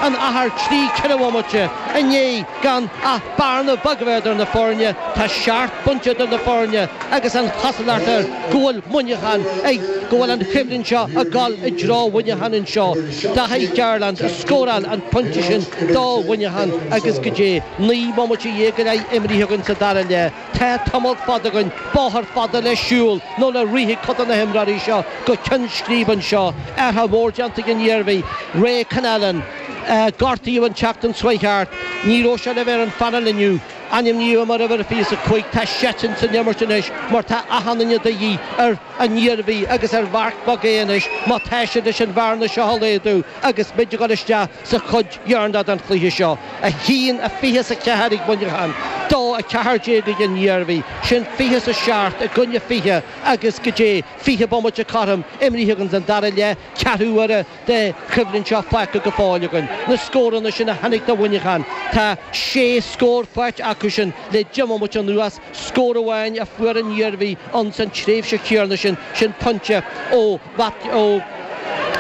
an athuair trí ceithre bomaite i ndiaidh gan ach bearna bheag a bheith idir na foirne. Tá seacht bpointe idir na foirne agus an chosúlacht air go bhfuil Muineachán ag go bhfuil an choimhlint seo ag dul i dtreo Mhuineacháin anseo. Daithí Garland a scóráil an pointe sin do Mhuineachán agus go díreach naoi mbomaite déag go leith imithe againn sa dara leath. Tá tamall fada againn, bóthar fada le siúl nó le rith ag cuid de na himreoirí seo go ceann scríbe anseo. Athruithe móra déanta ag an Iarmhí, Ray Connellan. Gortaíodh an tseachtain seo thart. Ní raibh sé le bheith ar an phainéal inniu. Ainmníodh é mar uimhir a 25. Tá sé istigh ins an imirt anois mar tá a thaithí de dhíth ar an Iarmhí agus ar Mark McHugh anois má tá siad leis an bhearna seo a laghdú agus muid ag dul isteach sa chuid dheireanach den chluiche seo, 1 a 20 's a ceathair ag Muineachán, 2 a 14 ag an Iarmhí, sin 20 's a seacht i gcoinne 20 agus go díreach 20 bomaite cothrom imithe againn den dara leath, ceathrú uaire den choimhlint seo fágtha go fóill againn. Na scóranna sin a tháinig do Mhuineachán, tá sé scór faighte acu sin le deich mbomaite anuas, scór amháin a fuair an Iarmhí ins an tréimhse chéanna sin, sin pointe ó Matt, ó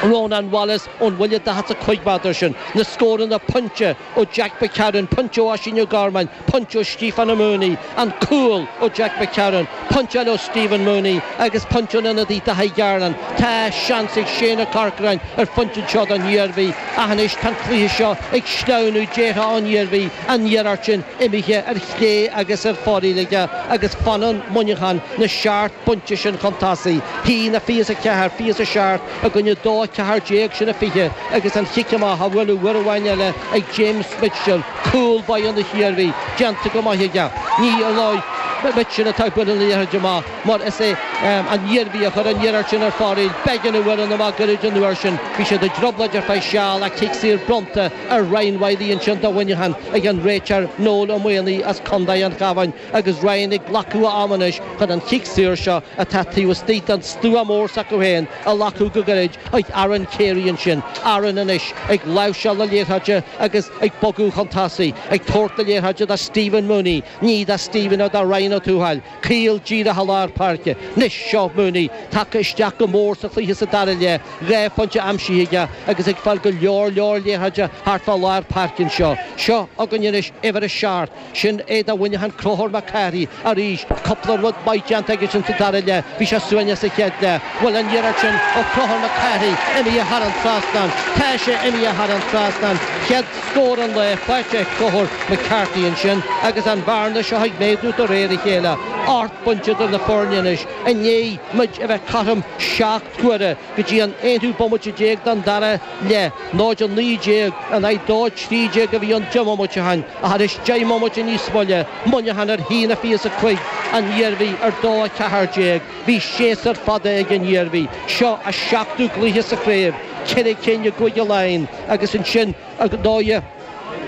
Rónán Wallace ón bhuille daichead 's a cúig méadar sin, na scóranna, pointe ó Jack McCarron, pointe ó Oisín McGorman, pointe ó Stephen Mooney, an cúl ó Jack McCarron, pointe eile ó Stephen Mooney agus pointe ón ionadaí Daithí Garland. Tá seans ag Shane Ó Corcráin ar phointe anseo don Iarmhí ach anois tá an cluiche seo ag sleamhnú, déarfá, ón Iarmhí. an iarracht sin imithe ar chlé agus ar fóraoil aige agus fanann Muineachán na seacht bpointe sin chun tosaigh, a haon a fiche 's a ceathair, fiche 's a seacht i gcoinne a dó a ceathair déag sin a fiche agus an chic amach á bhualadh uair amháin eile ag James Mitchell, cúl báire na hIarmhí, déanta go maith aige. Ní hé ar ndóigh Mitchell atá ag bualadh na liathróide amach mar is é an Iarmhí a chuir an iarracht sin ar fóraoil, Beggan a bhuail amach go goirid an uair sin. Bhí siad i dtrioblóid ar feadh seal ach cic saor bronnta Ar Ryan Wylie ansin do Mhuineachán ag an réiteoir Noel Ó Maonaigh as contae an Chabháin agus Ryan ag glacadh a ama anois chun an chic saor seo atá taobh istigh den stua mór s'acu féin a ghlacadh go gairid chuig Aaron Carey ansin. Aaron anois ag láimhseáil na liathróide agus ag bogadh chun tosaigh, ag tabhairt na liathróide do Stephen Mooney, ní do Stephen ach do Ryan Ó Tuathail. Caol díreach i lár páirce. Anois, seo Mooney, tagtha isteach go mór sa chluiche sa dara leath, dhá phointe aimsithe aige agus ag fáil go leor leor liathróide thart fá lár páirce anseo. Seo againn anois uimhir a seacht, sin é do Mhuineachán Conchúr Mac Cárthaigh arís, cúpla rud maith déanta aige sin sa dara leath, bhí sé ciúin sa chéad leath. An bhfuil an iarracht sin ó Chonchúr Mac Cárthaigh imithe thar an trasnán, tá sé imithe thar an trasnán, chéad Scór an lae faighte ag Conor McCarthy ansin agus an bhearna seo ag méadú de réir a chéile, ocht bpointe idir na foirne anois i ndiaidh muid a bheith cothrom seacht huaire go dtí an aonú bomaite déag den dara leath, 0-19 in aghaidh 2-13 a bhí ann do Mhuineachán ach anois deich mbomaite níos moille, Muineachán ar a haon a fiche 's a cúig, an Iarmhí ar dó a ceathair déag. Bhí séasúr fada ag an Iarmhí. Seo a seachtú gcluiche sa chraobh, ceithre cinn i gcúige Laighean agus ansin ar ndóighe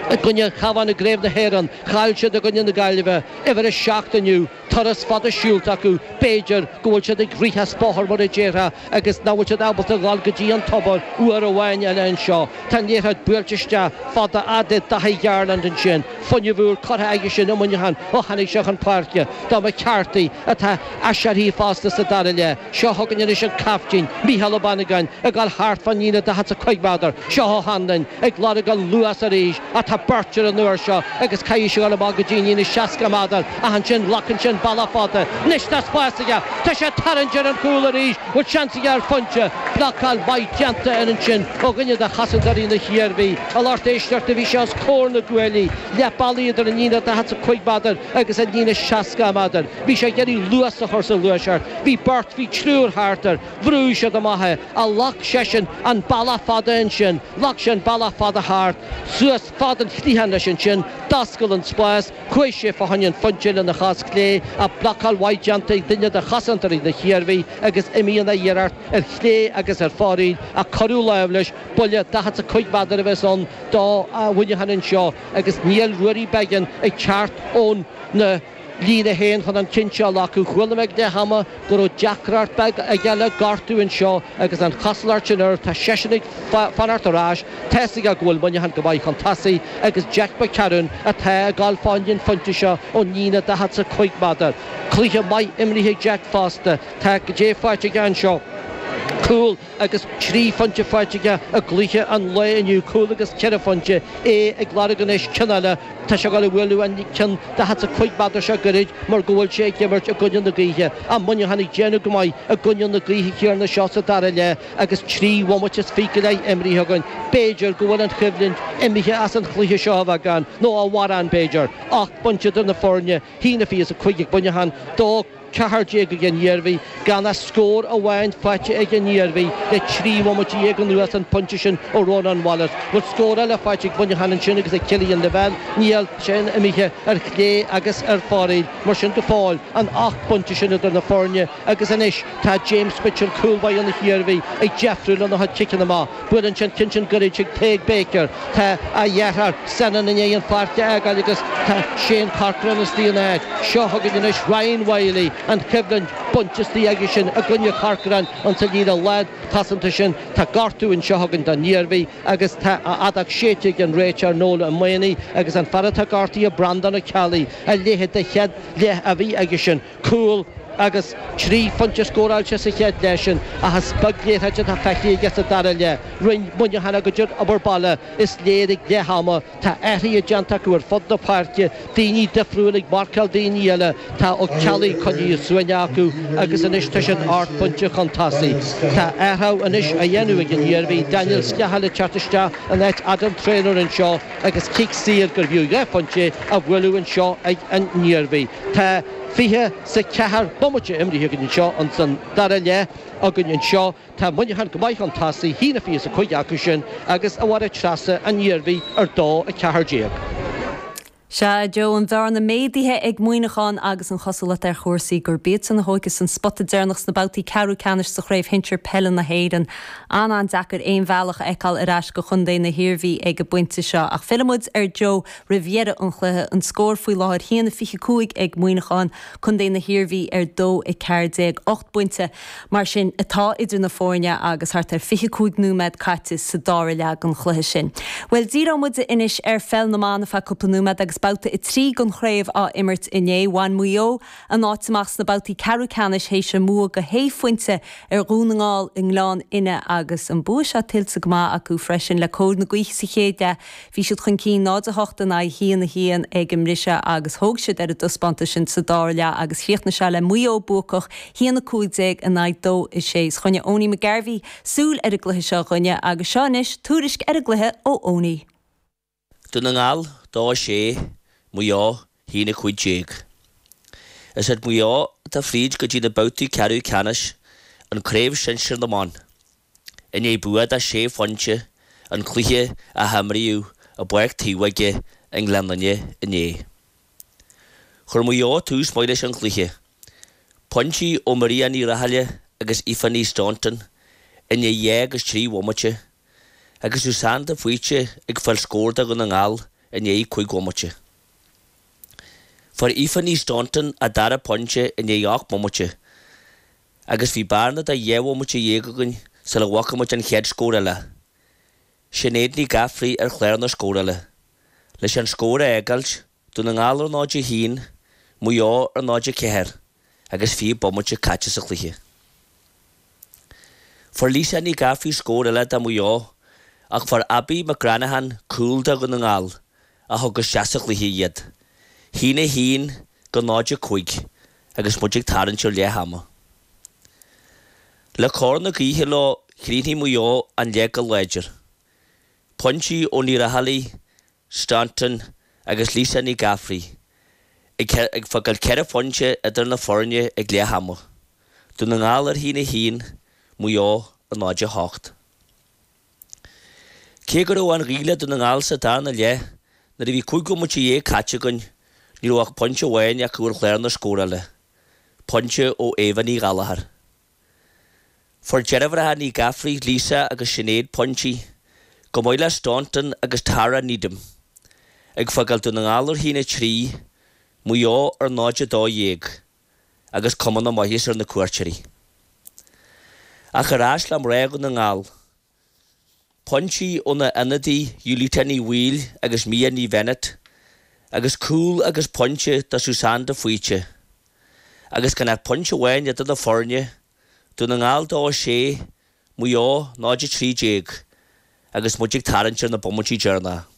i gcoinne an Chabháin i gcraobh na hÉireann. Chaill siad i gcoinne na Gaillimhe, uimhir a seacht inniu. Turas fada siúlta acu. B'fhéidir go bhfuil siad ag rith as bóthar mar a déarfá agus nach bhfuil siad ábalta dhul go dtí an tobar uair amháin eile anseo. Tá an liathróid buailte isteach fada fhad le Dáithí Garland ansin. Fuinneamh úr curtha aigesean i Muineachán ó tháinig sé chun páirce. Do McCarthy atá Aiséirithe fosta sa dara leath. Seo chugainn anois an caiftín, Mícheál Ó Banagáin, ag dul thart fán líne daichead 's a cúig mhéadar. Seo O'Hanlon ag lorg an luas arís, ach tá beirt air an uair seo agus caithfidh sé dhul amach go dtí an líne seasca méadar, ach ansin glacann sé an bealach fada. Anois tá spás aige. Tá sé ag tarraingt ar an gcúl arís. Bhfuil seans aige ar phointe? Blocáil mhaith déanta air ansin ó dhuine de chosantóirí na hIarmhí. A lucht éisteachta bhí sé os comhair na gcuaillí, leath bealaigh idir an líne daichead 's a cúig mhéadar, agus an líne seasca méadar. Bhí sé ag iarraidh luas a chur sa ghluaiseacht. Bhí beirt, bhí triúr thart air. Bhrúigh siad amach é. Ach ghlac seisean an bealach fada ansin? Ghlac sé an bealach fada thart, suas fad an chliatháin leis ansin, d'oscail an spás, chuaigh sé fá choinne an phointe lena chos chlé ach blocáil mhaith déanta ag duine de chosantóirí na hIarmhí agus imíonn an iarracht ar chlé agus ar fóraoil ach cuireadh lámh leis, buille daichead 's a cúig mhéadar a bheas ann do Mhuineachán anseo. agus níl Ruairí Beggan ag teacht óna líne fhéin chun an ceann seo a ghlacadh. Chuala mé ag leath ama go raibh deacracht beag aige le gortú anseo agus an chosúlacht sin air, tá seisean ag fanacht ar ais, tá's aige go bhfuil Muineachán go maith chun tosaigh agus Jack McCarron atá ag dul fá choinne an phointe seo ón líne 40 's a cúig mhéadar. Cluiche maith imrithe ag Jack fosta. Tá cad é faighte aige anseo. Cúl. agus trí phointe faighte aige i gcluiche an lae inniu, cúl agus ceithre phointe, é ag lorg anois cinn eile. Tá sé ag dul a bhualadh an ceann daichead 's a cúig mhéadar seo goirid mar go bhfuil sé ag imirt i gcoinne na gaoithe. Ach Muineachán ag déanamh go maith i gcoinne na gaoithe céanna seo sa dara leath agus trí bhomaite is fiche go leith imeartha againn. B'fhéidir go bhfuil an choimhlint imithe as an chluiche seo a bheagán, nó a mhórán b'fhéidir, ocht bpointe idir na foirne, a haon a fiche 's a cúig ag Muineachán, dó. 14 ag an Iarmhí, gan ach scór amháin faighte ag an Iarmhí le trí bhomaite dhéag anuas, an pointe sin ó Rónán Wallace. Bhfuil scór eile faighte ag Muineachán ansin agus ag Killian Lavelle, níl, sin imithe ar chlé agus ar fóraoil mar sin go fóill, an ocht bpointe sin idir na foirne agus anois tá James Mitchell, cúl báire na hIarmhí, ag deifriú lena chuid ciceanna amach. Buaileann sé an t-intinn gur iad Tadhg Baker, tá a dheartháir Senan i ndiaidh an pháirc a fhágáil agus tá Shane Corcoran istigh ina áit seo chugainn anois, Ryan Wylie, an choimhlint bainte istigh aige sin i gcoinne Corcoran insa líne lánchosanta sin. Tá gortú anseo chugainn don Iarmhí agus tá an fheadóg séidte ag an réiteoir Noel Ó Maonaigh agus an fear atá gortaithe, Breandán Ó Ceallaigh, a leithéid de chéad leath a bhí aige sin. cúl agus trí phointe scóráilte sa chéad leath sin ach is beag liathróid atá feicthe aige sa dara leath. Rinne Muineachán a gcuid obair baile, is léir, ag leath ama. Tá athruithe déanta acu ar fud na páirce, daoine difriúil ag marcáil daoine eile, tá Ó Ceallaigh coinnithe suaimhneach acu agus anois tá siad ocht bpointe chun tosaigh. Tá athrú anois á dhéanamh ag an Iarmhí, Daniel Scahill ag teacht isteach in áit Adam Treanor anseo. agus cic saor gurbh fhiú dhá phointe á bhualadh anseo ag an nIarmhí. Tá fiche 's a ceathair bomaite imrithe againn anseo ins an dara leath againn anseo. Tá Muineachán go maith chun tosaigh, a haon a fiche 's a cúig acu sin agus a Mháire Treasa an Iarmhí ar dó, 14. Sea, a Joe, an bhearna méadaithe ag Muineachán agus an chosúlacht ar chúrsaí gurb iadsan a thógfas an spota deireanach sna babhtaí ceathrú ceannais sa Chraobh Shinsir Peile na hÉireann. An-an-deacair aon bhealach a fheiceáil ar ais go Chontae na hIarmhí ag an bpointe seo ach fillfidh muid ar Joe roimh dheireadh an chluiche. An scór faoi láthair a haon 25 ag Muineachán, Contae na hIarmhí ar dó 14. Ocht bpointe mar sin atá idir na foirne agus thart ar fiche cúig nóiméad caite sa dara leath den chluiche sin. Bhuel díreoidh muid anois ar pheil na mban ar feadh cúpla nóiméad agus babhta a trí den chraobh á imirt inné. Bhain Maigh Eo. A n-áit amach sna babhtaí ceathrú ceannais théis a mbua go shé phointe ar Dhún na nGall i nGleann Fhinne agus an bua seo tuillte go maith acu freisin le cóir na gaoithe sa chéad leath. Bhí siad chun cinn 0 8 in aghaidh 1 1 ag an mbriseadh agus thóg siad ar an dtaispeántas sin sa dara leath agus chríochnaigh sé le Maigh Eo buacach 1 15 in aghaidh 2 6. Choinnigh Eoiní McGarvey súil ar an gcluiche seo dhúinne agus seo anois tuairisc ar an gcluiche ó Eoiní. Dún na nGall, dó, sé, Maigh Eo, hAon 15. Is iad Maigh Eo atá fríd go dtí na babhtaí ceathrú ceannais an Craobh Shinsir na mBan. I ndiaidh bua de shé phointe an cluiche a himríodh i bPáirc Taobhóige i nGleann Fhinne inné. Chuir Maigh Eo tús maith leis an chluiche. Pointí ó Maria Ní Rathaille agus Aoife Ní Staunton i ndiaidh dhá agus trí bhomaite agus Susanne de Faoite ag fáil scór do Dhún na nGall i ndiaidh cúig bhomaite. Fuair Aoife Ní Staunton a dara pointe i ndiaidh ocht mbomaite agus bhí bearna de dhá bhomaite dhéag againn sula bhfaca muid an chéad scór eile, Sinéad Ní Ghafraidh ar chlár na scórála, leis an scór a fhágáilt Dún na nGall ar 0-1, Maigh Eo ar 0-4 agus 20 bomaite caite sa chluiche. Fuair Lisa Ní Ghafraidh scór eile do Mhaigh Eo ach fuair Abbie McGranaghan cúl do Dhún na nGall a thug isteach sa chluiche iad. 1-1 go 0-5 agus muid ag tarraingt ar leath ama. Le cóir na gaoithe leo chríochnaigh Maigh Eo an leath go láidir. Pointí ó Ní Raghallaigh Staunton agus Lisa Ní Ghafraidh ag fágáil ceithre phointe idir na foirne ag leath ama, Dún na nGall ar a haon a haon, Maigh Eo ar 0 8. Cé go raibh an ghaoth le Dún na nGall sa darna leath, nuair a bhí cúig bhomaite dhéag caite againn, ní raibh ach pointe amháin acu ar chlár na scórála, pointe ó Éabha Ní Ghallchóir. Fuair deirfiúracha Ní Ghafraidh, Lisa agus Sinéad pointí, chomh maith le Staunton agus Tara Needham, ag fágáil Dún na nGall ar 1 3, Maigh Eo ar 0 12 agus cuma na maitheasa ar na cuairteoirí. Ach ar ais le mná Dhún na nGall. Pointí ó na hionadaithe Ulita Ní Bhaoill agus Mia Ní Bhennett agus cúl agus pointe do Susanne de Faoite. Agus gan ach pointe amháin idir na foirne, Dún na nGall 2 6, Maigh Eo 0 13, agus muid ag tarraingt ar na bomaití deireanacha.